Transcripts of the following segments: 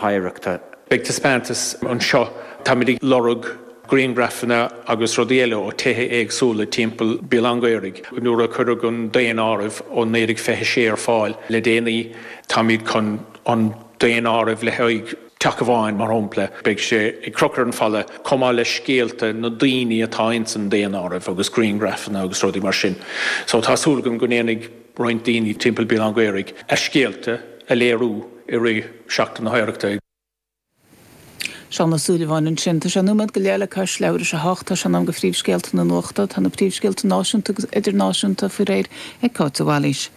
hOidhreachta. Beidh taispeántas anseo, táimid ag lorg grianghrafanna agus rudaí eile ó tithe éagsúla timpeall Béal Átha an Ghaorthaidh. Nuair a cuireadh an daonáireamh ó 1926 ar fáil le déanaí, táimid chun an daonáireamh le haghaidh teach amháin mar shompla, beidh sé ag crochadh ar an falla, chomh maith le scéalta na daoine atá ins an daonáireamh agus grianghrafanna agus rudaí mar sin. So tá súil agam go ndéanfaidh. roinnt daoine timpeall Béal Átha an Ghaorthaidh a scéalta a léiriú i rith Sheachtain na hOidhreachta. Seán Ó Súilleabháin ansin. Tá sé nóiméad go leith le cois leathuair tar éis a hocht. Tá sé in am go phríomhscéalta na nuachta. Tá na príomhscéalta náisiúnta agus idirnáisiúnta faoi réir ag Cáit de Bhailís.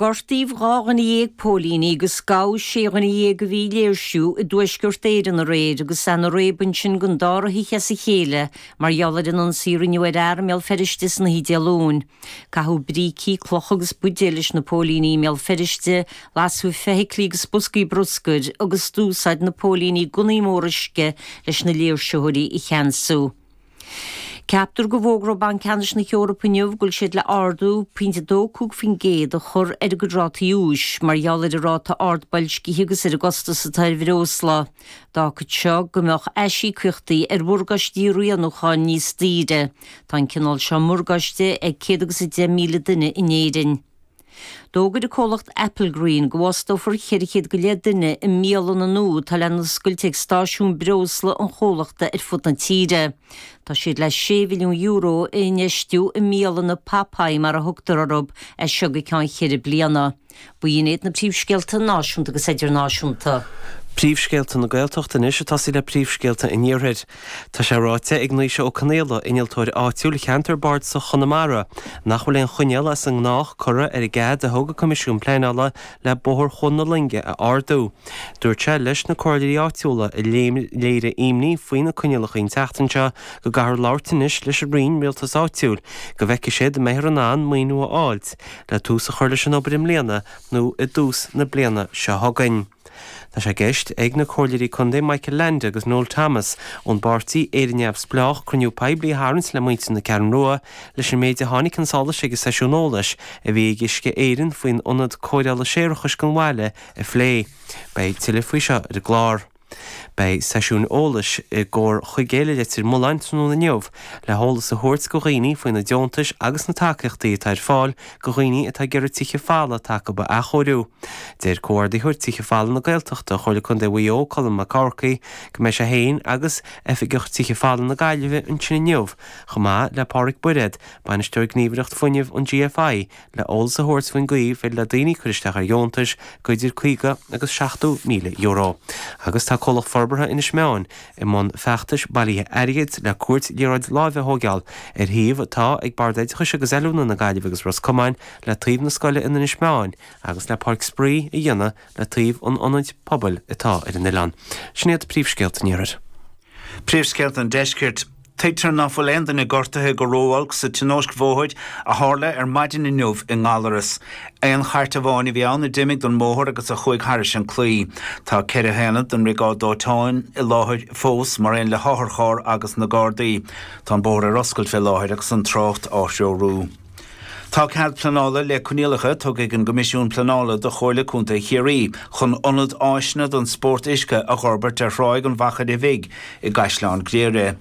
Gortaíodh dhá dhuine dhéag póilíní agus gabhadh sé dhuine dhéag a bhí ag léirsiú i dTuaisceart Éireann aréir agus lean círéib ansin don dara hoíche as a chéile mar gheall ar an ionsaí a rinneadh ar fhear i mBéal Feirste san oíche Dé Luain. Caitheadh brící, clocha agus buidéil leis na póilíní i mBéal Feirste, lasadh feithiclí agus boscaí bruscair agus d'úsáid na póilíní gunnaí móra uisce leis na léirsitheoirí a cheansú. Ceaptar go bhfógróidh Banc Ceannais na hEorpa inniu go bhfuil siad le ardú pointe 25% a chur ar a gcuid rátaí úis mar gheall ar an ráta ard boilscithe agus ar an gcostas atá ar bhreosla. D'fhágfadh seo go mbeadh aisíocaíochtaí ar mhorgáistí rianúcháin níos daoire. Tá an cineál seo morgáiste ag céad agus a deich míle duine in Éirinn. D'fhógair an comhlacht Applegreen go bhfostófar ceithre chéad go leith duine i mbialanna nua atá le n-oscailt ag stáisiúin breosla an chomhlachta ar fud na tíre. Tá siad le sé mhilliún euro a infheistiú i mbialanna Popeye mar a thugtar orthu, as seo go ceann cheithre bliana. Ba shin iad na príomhscéalta náisiúnta agus idirnáisiúnta. Príomhscéalta na Gaeltachta anois ag tosaí le Príomhscéalta an Iarthair. Tá sé ráite ag Naoise Ó Conaola, innealtóir áitiúil cheantar Bardasach Chonamara, nach bhfuil aon choinníoll as an ngnách curtha ar an gcead a thug an Coimisiún Pleanála le Bóthar Chuan na Loinge a ardú. Dúirt sé leis na comhairleoirí áitiúla a léirigh imní faoi na coinníollacha an tseachtain seo go gcaithfear labhairt anois leis an Roinn, Rialtas Áitiúil, go bhfeicfidh siad an mbeifear in ann maoiniú a fháilt. le tús a chur leis an obair i mbliana nó i dtús na bliana seo chugainn. Tá sé i gceist ag na Comhairleoirí Contae Michael Leainde agus Noel Thomas ón bpáirtí Éire Neamhspleách cruinniú poiblí a tharraingt le muintir na Ceathrún Rua leis an méid a tháinig chun solais ag an seisiún eolais a bhí ag Uisce Éireann faoin Ionad Cóireála Séarachais don bhaile a phlé. Beidh tuilleadh faoi seo ar an gclár. Beidh seisiún eolais i gComhar Chuigéil i Leitir Mealláin tráthnóna inniu le heolas a thabhairt go dhaoine faoi na deontais agus na tacaíochtaí atá ar fáil go dhaoine atá ag iarraidh tithe folmha atá acub a athchóiriú. Deir Comhordaitheoir Tithe Folmha na Gaeltachta Chomhairle Contae Mhaigh Eo Colm Mac Eachmharcaigh go mbeidh sé féin agus Oifigeach Tithe Folmha na Gaillimhe ansin inniu chomh maith le Pádraic Bairéad, Bainisteoir Gníomhaireacht Fuinnimh an GFI, le eolas a thabhairt faoin gcaoi ar féidir le daoine cur isteach ar dheontais de idir €50 agus €70,000 agus tá Comhlacht Forbartha Inis Meáin i mbun feachtais bailithe airgid le cúirt liathróid láimhe a thóigeáil ar shuíomh atá ag Bord Oideachais agus Oiliúna na Gaillimhe agus Ros Comáin le taobh na scoile in Inis Meáin agus le Páirc Spraoi a dhéanamh le taobh an ionaid pobail atá ar an oileán. Sin iad príomhscéalta an iarthair. Príomhscéalta an deiscirt. Tuigtear nach bhfuil aon duine gortaithe go ró-olc sa tionóisc bhóthair a tharla ar maidin inniu i nGallaras. Aon chairt amháin a bhí ann a d'imigh den mbóthar agus a chuaigh thairis an claí. Tá ceithre haonad den mBriogáid Dóiteáin i láthair fós, mar aon le hotharcharr agus na Gardaí. Tá an bóthar ar oscailt fé láthair agus an trácht á threorú. Tá cead pleanála le coinníollacha tugtha ag an gCoimisiún Pleanála do Chomhairle Contae Chiarraí chun ionad áiseanna don spórt uisce a dh'fhorbairt ar Thráigh an Mhachaire Bhig i gCaisleán Ghriaire.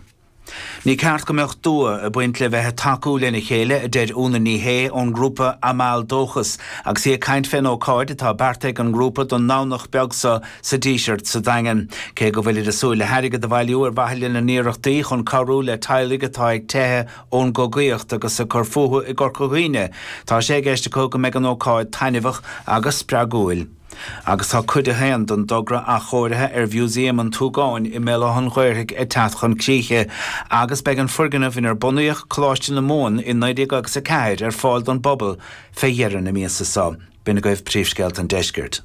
Ní ceart go mbeadh dua ag baint le bheith ag tacú lena chéile, a deir Úna Ní Shé ón ngrúpa Amal Dóchas agus í ag caint fén ócáid atá beartaithe ag an ngrúpa don nDomhnach beag so sa Díseart sa Daingean. Cé go bhfuilid ag súil le hairgead a bhailiú ar mhaithe lena n-iarrachtaí chun cabhrú le teaghlaigh atá ag teitheadh ón gcogaíocht agus ag cur fúthu i gCorca Dhuibhne, tá sé i gceist acu go mbeidh an ócáid taitneamhach agus spreagúil. Agus tá Cuid a hAon den dtogra athchóirithe ar Mhúsaem an tSúgáin i mBéal Átha'n Ghaorthaidh ag teacht chun críche agus beidh an foirgneamh inar bunaíodh Coláiste na Mumhan i 1904 ar fáil don bpobal fé dheireadh na míosa so. B'in agaibh príomhscéalta an deiscirt.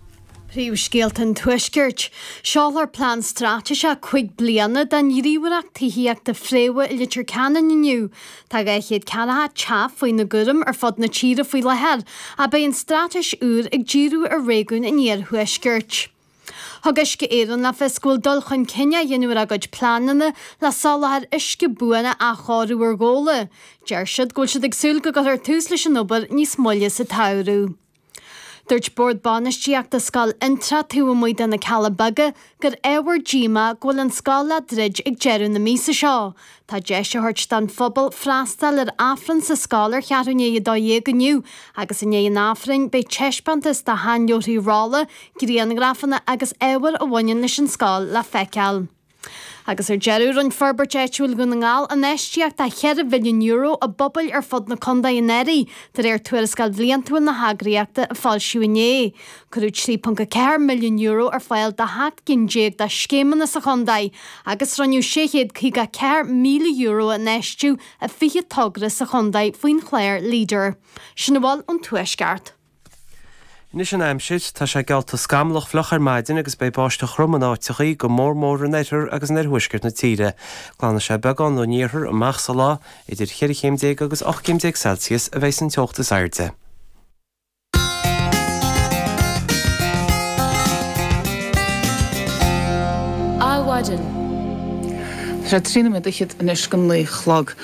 Príomhscéalta an tuaiscirt. Seolfar plean straitéiseach cúig bliana don ghníomhaireacht tithíochta Fréamha i Leitir Ceanainn inniu. Tá 200 ceann de thithe faoina gcúram ar fud na tíre faoi láthair ach beidh an straitéis úr ag díriú ar réigiún an iarthuaiscirt. Thug Uisce Éireann le fios go bhfuil dul chun cinn á dhéanamh ar a gcuid pleananna le soláthar uisce buan a athchóiriú ar Ghabhla. Deir siad go bhfuil siad ag súil go gcuirfear tús leis an obair níos moille sa tsamhradh. Dúirt Bord Bainistíochta Scoil Fhionntrá taobh amuigh de na Cealla Beaga gur ábhar díomá go bhfuil an scoil á druid ag deireadh na míosa seo. Tá deis á thabhairt don phobal freastal ar Aifreann sa scoil ar cheathrú i ndiaidh a 12 inniu agus i ndiaidh an Aifrinn beidh teispeántas de sheanleabharthaí rolla, grianghrafanna agus ábhar a bhaineann leis an scoil le feiceáil. Agus ar deireadh, rinne Forbairt Áitiúil Dhún na nGall infheistíocht de €4 mhilliún i bpobail ar fud na contae anuraidh, de réir Tuarascáil Bhliantúil na heagraíochta a foilsíodh inné. Cuireadh €3.4 milliún ar fáil do sheacht gcinn déag de scéimeanna sa chontae agus rinneadh €654,000 a infheistiú i 20 togra sa chontae faoin chlár Leader. Sin a bhfuil ón Tuaisceart. Anois an aimsir. Tá sé geallta scamallach fliuch ar maidin agus beidh báisteach throm in áiteachaí, go mór mór in oirthear agus in oirthuaisceart na tíre. Glanfaidh sé beagán ón iarthar amach sa lá. Idir cheithre chéim déag agus ocht gcéim déag Celsius a bheidh san teocht is airde. Adhmhaidin. Tá trí nóiméad fichead anois don naoi a chlog.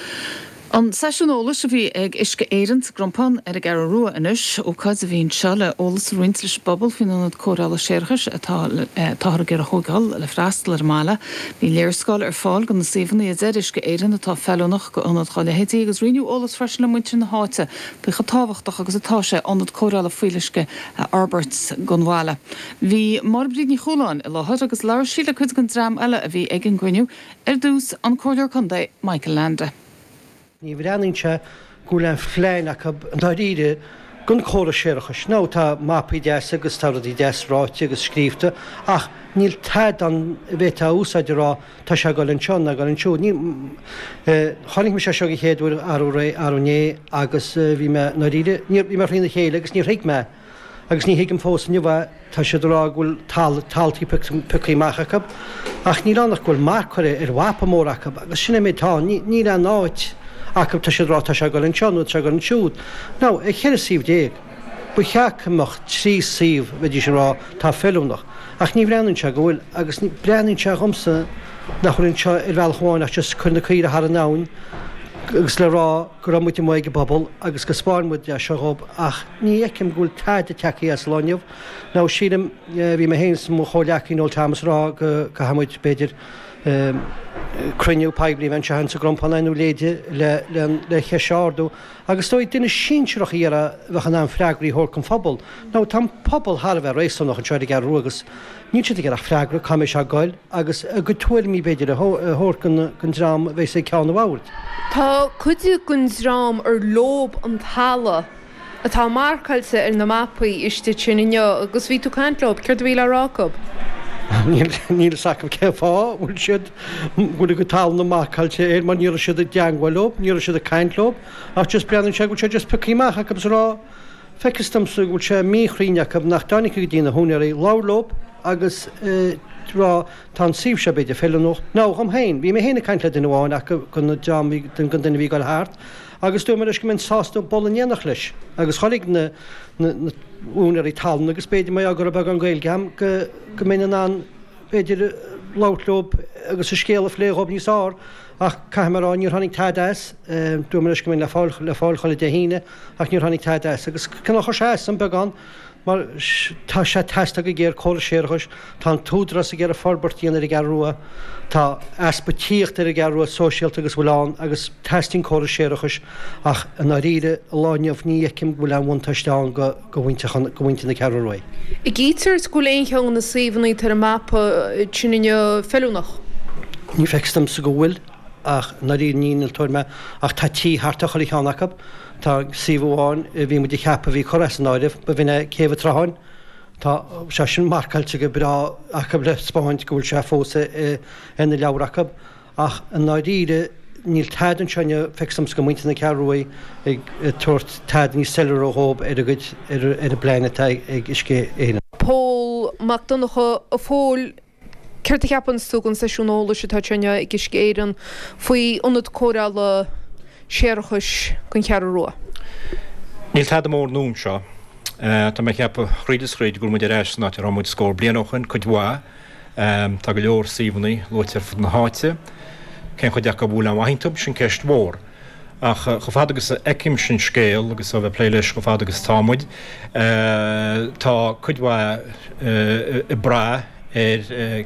An seisiún eolais a bhí ag Uisce Éireann sa gCrompán ar an gCeathrú Rua anois, ócáid a bhí anseo le eolas a roinnt leis an bpobal faoin ionad cóireála séarachais atá táthar ag iarraidh a thógáil le freastal ar an mbaile. Bhí léarscáil ar fáil de na suíomhanna a deir Uisce Éireann atá feiliúnach d'ionad dá leithéidí agus roinneadh eolas freisin le muintir na háite faoi chomh tábhachtach agus atá sé ionad cóireála fuíolluisce a fhorbairt don bhaile. Bhí Máire Bríd Ní Chualáin i láthair agus labhair sí le cuid den dream eile a bhí ag an gcruinniú, ar dtús, an Comhairleoir Contae, Michael Leainde. Ní bhreathnaíonn sé go bhfuil aon phlean acu i ndáiríre don chóras séarachais. Now, tá mapaí deasa agus tá rudaí deas ráite agus scríobhta ach níl tada ann a bhféadfá a úsáid a rá, Tá sé ag goil anseo, ná ag goil ansiúd. Ní. Chonaic mé sé seo don chéad uair arú ré, arú inné, agus bhí mé, i ndáiríre, níor, bhí mé thrína chéile agus níor thuig mé, agus ní thuigim fós inniu é. Tá siad ag rá go bhfuil tal, taltaí pioctha amach acu, ach níl ann ach go bhfuil marc curtha ar mhapa mór acu, agus sin an méid atá ann. Ní, níl aon áit acu, tá siad ag rá tá sé ag goil anseo nó tá sé ag goil ansiúd. Now, ar cheithre suíomh déag. Ba cheart go mbeadh trí suíomh, bheidís ag rá, atá feiliúnach, ach ní bhreathnaíonn sé go bhfuil, agus breathnaíonn sé dhomsa nach bhfuil anseo ar bhealach amháin ach just cur na caoirigh thar an abhainn agus le rá go raibh muid amuigh ag an bpobal agus go 'spáin muid é seo dhób ach ní fheicim go bhfuil tada tagtha as an lá inniu, now, sílim, bhí mé féin is mo chomhghleacaí Noel Thomas ag rá go gcaithfidh muid, b'fhéidir, cruinniú poiblí a bheith anseo in sa gCrompán nó a leithéide le an cheist seo a ardú. Agus is dóigh, duine sinsearach a iarraidh a bheadh in ann freagraí a thabhairt don phobal, now, tá an pobal thar a bheith réasúnach anseo ar an gCeathrú agus níl siad ag iarraidh ach freagra, cá mbeidh sé ag goil, agus a gcuid tuairimí, b'fhéidir, a thabhairt don dream a bheidh sé ag ceann an bhóthair. Tá cuid den dream ar leo an talamh atá marcáilte ar na mapaí istigh ansin inniu, agus bhí tú ag caint leo, céard a bhí le rá acu? Níl a fhios acu cén fáth a bhfuil siad Go dtí gcuid talúna marcáilte air, mar ní raibh siad i dteangmháil leo, ní raibh siad ag caint leo, ach just breathnaíonn sé go bhfuil sé just piocthaí amach acu is a rá, feictear domsa go bhfuil sé míchruinn acu nach dtáinig go dtí na húinéirí, labhairt leo agus ag rá tá an suíomh seo, b'fhéidir, feiliúnach. Now, dhom féin, bhí mé féin ag caint le duine amháin acu den dream bhí, den den duine bhí ag goil thart agus dúirt mé leis go mbeinn sásta dul in éineacht leis agus chuig na, na, na, úinéirí talún agus b'fhéidir mar gheall go raibh beagán Gaeilge a'm go, go mbeinn in ann féidir labhairt leo agus an scéal a phlé dhóibh níos fhearr ach caithfidh mé a rá níor tháinig tada as. Dúirt mé leis go mbeinn le fáil chuile Dé hAoine ach níor tháinig tada as. Agus cineál chuir sé as dom beagán mar tá sé ag teastáil go géar córas séarachais, tá an tÚdarás ag iarraidh forbairt a dhéanamh ar an gCeathrú Rua, tá easpa tithíocht ar an gCeathrú Rua sóisialta agus a bhfuil ann agus teastaíonn córas séarachais ach i ndáiríre an lá inniu ní fheicim go bhfuil aon bhuntáiste ann go do mhuintir na Ceathrú Rua. An bhfeictear go bhfuil aon cheann de na suíomhanna atá ar an mapa sin inniu feiliúnach. Ní fheictear domsa go bhfuil, ach i ndáiríre ní innealtóir mé, ach tá tithe thart ar chuile cheann acu. Tá suíomh amháin a bhí muid a cheapadh a bhí curtha as an áireamh, ba bhin é Céibh an tSrutháin. Tá sé sin marcáilte go breá acu le 'spáint go bhfuil sé fós ar na leabhair acu. Ach i ndáiríre, níl tada anseo inniu, feictear domsa do mhuintir na Ceathrú Ruaidh ag tabhairt tada níos soiléire dhóibh ar a gcuid, ar an bplean atá ag Uisce Éireann. Pól Mac Donnacha, A Phóil, céard a cheapanns tú den seisiún eolais atá anseo inniu ag Uisce Éireann faoi ionad cóireála séarachais don Cheathrú Rua? Níl tada mór nua anseo. Tá mé ag ceapadh, thríd is thríd, go bhfuil muid ar ais san áit a raibh muid scór bliain ó shoin, cuid mhaith. Tá go leor suíomhanna luaite ar fud na háite. Cén chuid acu a bhfuil aon mhaith iontu, sin ceist mhór. Ach chomh fada agus a fheicimse an scéal, agus ó bheith ag plé leis chomh fada agus atá muid, tá cuid mhaith ag brath ar,